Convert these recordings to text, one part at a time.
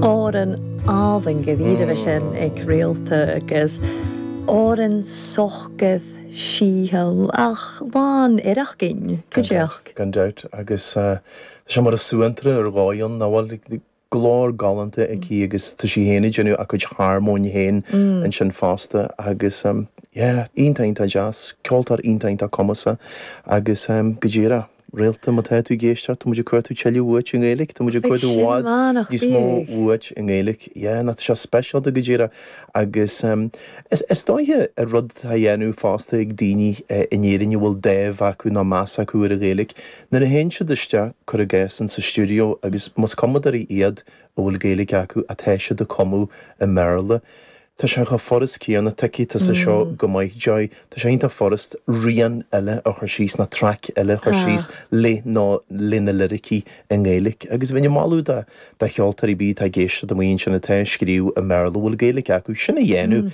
Árann álainn go bhfírinne sin ag réalta agus Árainn sochgaidh síothal ach lán oireachgin, go deoch. Gan dabht, agus tá sé mar is suantraí ar dhóigh ann, nach bhfuil? Glór galánta aici agus tá sí féin ag déanamh a cuid harmóin féin ansin fosta agus yeah, iontach, iontach deas, ceoltóir iontach, iontach cumasach agus go díreach. Réalta, má tá tú ag éisteacht, tá muid ag iarraidh tuilleadh uait i nGaeilic, tá muid ag iarraidh i bhfad níos mó uait i nGaeilic. Yeah, nach bhfuil seo speisialta go díreach agus is dóiche rud atá á dhéanamh fosta ag daoine in Éirinn a bhfuil dáimh acu nó meas acu ar an Ghaeilic nuair a théann siad isteach, cuir i gcás, insa stiúideo agus más cumadóirí iad a bhfuil Gaeilic acu, atá siad ag cumadh i mBéarla. Tá sé chomh furast céanna, tuigfidh tusa seo go maith, Joy, tá sé iontach furast rian eile a chur síos ná traic eile a chur síos le nó le na liricí i nGaeilic. Agus bheinn ag moladh do do cheoltóirí, b'fhéidir atá ag éisteacht amuigh ansin atá ag scríobh i mBéarla a bhfuil Gaeilic acu, sin a dhéanamh.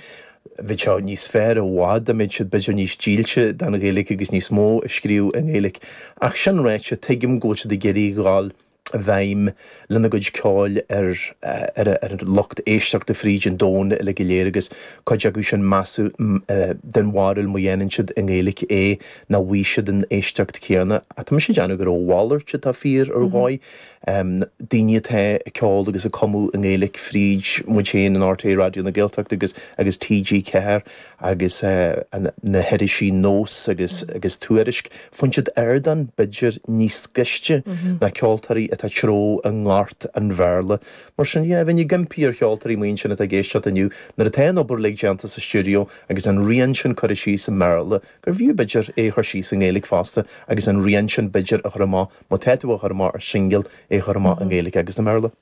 Bheadh sé níos fearr i bhfad dá mbeadh siad b'fhéidir níos dílse don Ghaeilic agus níos mó ag scríobh i nGaeilic. Ach sin ráite, tuigim go bhfuil siad ag iarraidh a dhul i bhfeidhm lena gcuid ceoil ar an lucht éisteachta fríd an domhan uilig go léir agus cuid acu sin, measaim den bharúil má dhéanann siad i nGaeilge é nach bhfaighidh siad an éisteacht chéanna. Tá mise ag déanamh gur a mhalairt atá fíor ar dhóigh, daoine atá ag ceol agus ag cumadh i nGaeilge fríd muid féin in rté Raidió na Gaeltachta agus TG4, agus na hirisí Nós agus agus Tuairisc, faigheann siad ardán b'fhéidir níos gaiste ná ceoltóirí atá ag treabhadh i ngort an Bhéarla. Mar sin, yeah, bheinn ag impí ar cheoltóirí amuigh ansin atá ag éisteacht inniu, nuair atá an obair uilig déanta sa stiúideo agus an rian sin curtha síos i mBéarla, gurbh fhiú b'fhéidir é a chur síos i nGaeilge fosta agus an rian sin b'fhéidir a chur amach, má tá tú á chur amach ar shingil, é a chur amach i nGaeilge agus i mBéarla.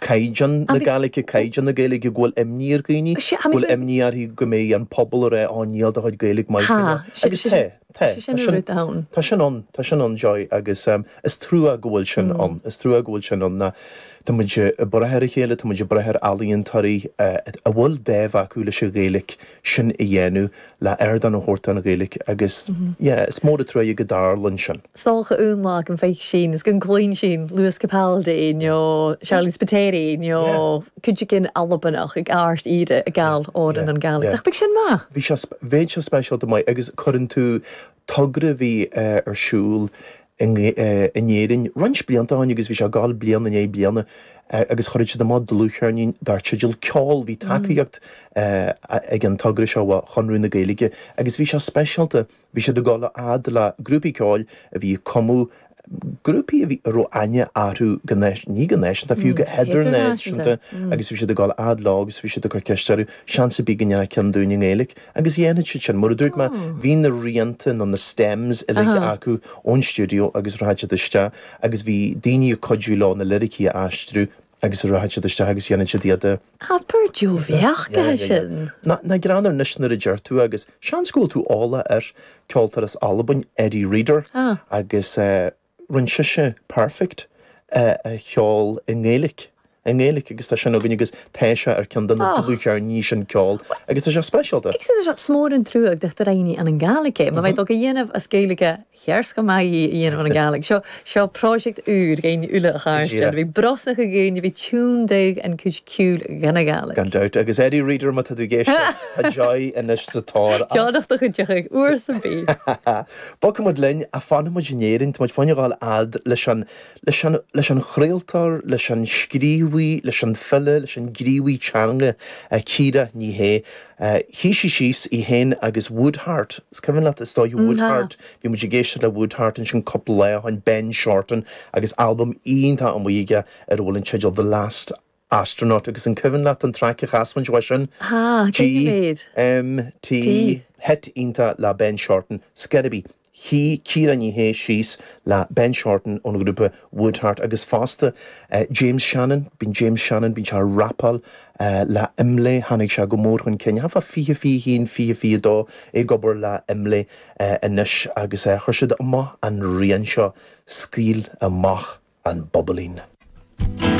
caighdeán na Gaeilge, caighdeán na Gaeilge, go bhfuil imní ar dhaoine, go bhfuil imní orthu go mbeidh an pobal ag rá níl do chuid Gaeilge maith go leor. Agus tá, tá, tá sin, tá sin ann, tá sin ann, Joy, agus is trua go bhfuil sin ann, is trua go bhfuil sin ann ná tá muid ag brath ar a chéile, tá muid ag brath ar ealaíontóirí a bhfuil dáimh acu leis an Ghaeilge, sin a dhéanamh, le ardán a thabhairt don Ghaeilge agus yeah, is mór a' truaighe go dtarlaíonn sin. 's tòcha ionlach an ficsin is go gcluinn sinn Lewis Capaldi nó Sharleen Spiteri nó cuid againn Albanach ag amharc Éire ag gabháil amhrán i nGaeilge. Nach mbeadh sin maith? Bhí sé, bheadh sé speisialta maith agus cuireann tú togra a bhí ar siúl in Éirinn roinnt blianta ó shin agus bhí sé ag gabháil bliain i ndiaidh bliana agus chuireadh siad amach dlúthcheirnín dar teideal Ceol. Bhí tacaíocht ag an togra seo ó Chonradh na Gaeilge agus bhí sé speisialta, bhí siad ag dul a fhad le grúpaí ceoil a bhí ag cumadh, grúpaí a raibh aithne orthu go, ní go náisiúnta, fiú go hidirnáisiúnta agus bhí siad ag dul a fhad leo agus bhí siad ag cur ceiste orthu, seans ar bith go ndéanfá ceann dúinn i nGaeilic. Agus dhéanfadh siad sin, mar a dúirt mé, bhí na rianta nó na stems uilig acu ón stiúideo agus rachadh siad isteach agus bhí daoine ag cuidiú leo na liricí a aistriú agus rachadh siad isteach agus dhéanfadh siad iad a Abair Joy, bheadh, go hea sin. Nach greannmhar anois nuair a deir tú, agus seans go bhfuil tú eolach air, ceoltóir as Albain, Eddi Reader, agus eh, rinne sise Perfect a cheol i nGaeilic, i nGaeilic agus tá sin againn agus tá sé ar ceann de na dlúthcheirníní sin, Ceol, agus tá sé speisialta. Is mór an trua nach do rinn i ann an Gàidhlig e, má bheidh dó a dhéanamh as Gaeilge shears go maith í a dhéanamh ann an Gàidhlig. Seo, seo pròiseact ùr dhuinn uile a chàirdean, bhith brosnachadh dhaoine bhith tionndadh an cuid ciùil dhan a' Ghàidhlig. Gan dabht, agus Eddi Reader má tá tú ag éisteacht, tá Joy anois sa tóir ort. Joy nach do chuid de chuig uair sa mhí. Bogfaidh muid linn, a fanfaidh muid in Éirinn, tá muid féin ag dul a fhad leis an, leis an, leis an chraoltóir, leis an scríobhaí, leis an file, leis an ghníomhaí teanga, Ciara Ní É. Shuigh sí síos í féin agus Woodheart, is cuimhin leat, is dóiche, Woodheart, bhí muid ag éisteacht le Woodheart ansin cúpla lá ó shoin, Ben Shorten, agus albam iontach amuigh aige ar a bhfuil an teideal The Last, astronaut agus an cuimhin leat an traic a chas muid uaidh sin? H, G, Cé mhéad? M, T, T. Hit iontach le Ben Shorten, Skidibee. Shuigh Ciara Ní É síos le Ben Shorten ón ghrúpa Woodheart agus fosta James Shannon, bíonn James Shannon, bíonn sé a' rapáil le Imlé, tháinig sé go mór chun cinn, thart fá 2021, 2022, é ag obair le Imlé anois agus chuir siad amach an rian seo, Scaoil Amach an Bobailín.